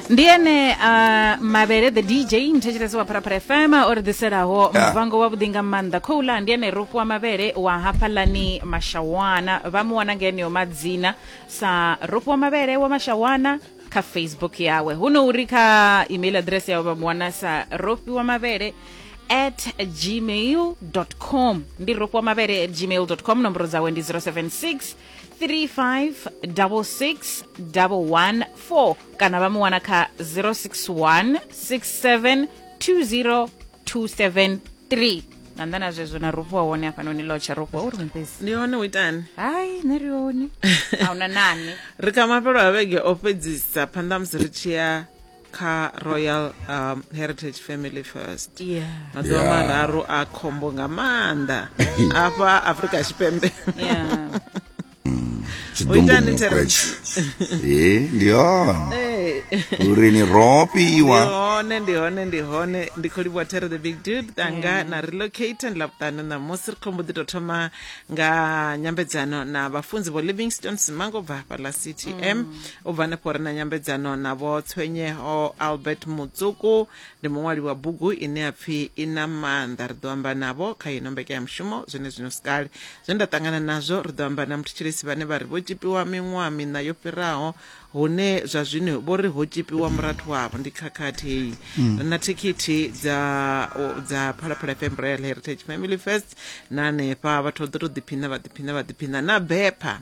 ndi ene uh, mavhele the dj mthetshelesi wa pharapara fm o ri ḓiselaho Yeah. muvango wa vhuḓi nga maanḓa khoula ndi ene rufu wa mavhele wa hafhalani mashawana vha mu wana nga eneo madzina sa rufu wa mavhele wa mashawana kha facebook yawe hu no uri kha email address yawe vha mu wana sa rufi wa mavhele at gmail com ndi rufu wa mavhele at gmail com nomboro dzawe ndi 076 3566114 kana vha mu wana kha 061 67 20 273 nga nnḓa na zwezwo na rufho wa hone hafhanoni lotsha rufho uri mupezi ndi hone u itani hayi nṋe ri hone a huna nane ri kha mafhelo a vhege o fhedzisa phanḓa musi ri tshi ya kha royal um, heritage family first yeah. maḓuvha yeah. mararu a khombo nga maanḓa afha afrika tshipembe yeah. Eh, ndi hone eh. uri ni ropiwa hone ndi hone ndi hone ndi khou livhuwa tere the big dude tanga na relocate ndi lavhuṱanu ṋamusi ri khombo ḓi tou thoma nga nyambedzano na vhafunzi vho livingstone simango bva hafhaḽa ctm mm. u bva hanefho ri na nyambedzano na vho tshwenyeho albert mutsuku ndi muṅwali wa bugu ine ya pfhi i na maanḓa ri ḓo amba navho kha ino mbekanyamushumo zwine zwino sikale zwe nda ṱangana nazwo ri ḓo amba na muthetshelesi vhane vha ri vho tshipiwa miṅwaha miṋa yo fhiraho hune zwa zwino vho ri ho tshipiwa murathu wavho ndi khakhathei ri na thikhithi dza o- dza phalaphala fm royal heritage family first na hanefha vhathu vha ḓo tou ḓiphina vha ḓiphina vha ḓiphina na bepha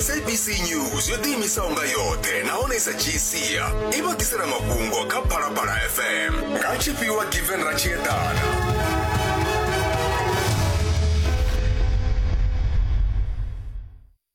sabc news yo ḓiimisaho nga yoṱhe nahone sa gcia i vha ḓisela mafhungo kha phalaphala fm nga tshifhiwa given ra tshi eḓana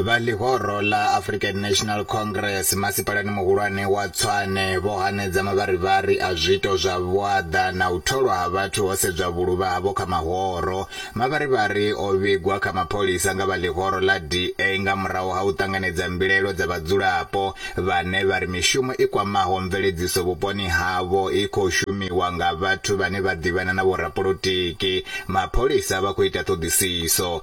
Vha ḽihoro ḽa African National Congress masipalani muhulwane wa Tshwane vho hanedza mavharivhari a zwiito zwa vhuaḓa na u tholwa ha vhathu ho sedzwa vhuluvha havho kha mahoro. Mavharivhari o vhigwa kha mapholisa nga vha ḽihoro ḽa DA nga murahu ha u ṱanganedza mbilaelo dza vhadzulapo vhane vha ri mishumo i kwamaho mveledziso vhuponi havho i khou shumiwa nga vhathu vhane vha ḓivhana na vhorapolotiki. Mapholisa vha khou ita ṱhoḓisiso.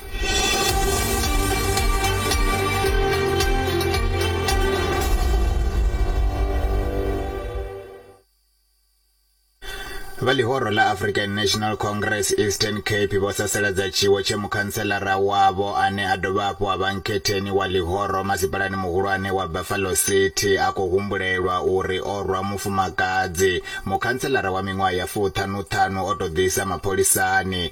vha ḽihoro ḽa african national congress eastern cape vho sasaladza tshiwo tshe mukhantselara wavho ane a dovha hafhu a vha nkhetheni wa ḽihoro masipalani muhulwane wa buffalo city a khou humbulelwa uri o rwa mufumakadzi mukhantselara wa miṅwaha ya fuṱhanuṱhanu o tou ḓisa mapholisani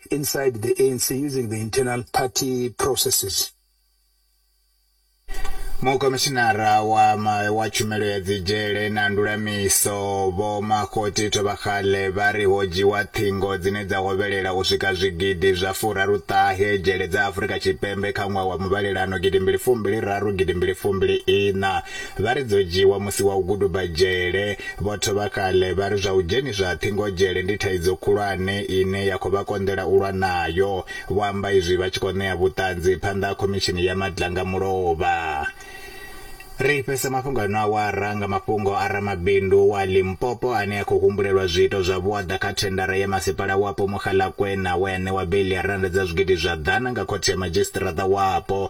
inside the ANC using the internal party processes. mukomishinara wa, ma, wa tshumelo ya dzidzhele na ndulamiso vho makgoti thovhakgale vha ri ho dzhiwa ṱhingo dzine dza hovhelela u swika zwigidi zwa furaruṱahe dzhele dza afurika tshipembe kha ṅwaha wa muvhalelano gidimbili fumbili raru gidimbili fumbili iṋa Vha ri dzo dzhiiwa musi wa u guduba dzhele. Vho Thovha Kale vha ri zwa u dzheniswa ha ṱhingo dzhele ndi thaidzo khulwane ine ya khou vha konḓela u lwa nayo. Vho amba izwi vha tshi khou ṋea vhuṱanzi phanḓa ha Khomishini ya Madlanga Mulovha. Ri fhedzisa mafhungo ano awara nga mafhungo a ramabindu wa Limpopo ane a khou humbulelwa zwiito zwa vhuaḓa kha thendara ya masipala wapo Mogalakwena we a ṋewa beiḽi ya rannda dza zwigidi zwa ḓana nga khothe ya madzhisiṱiraṱa wapo.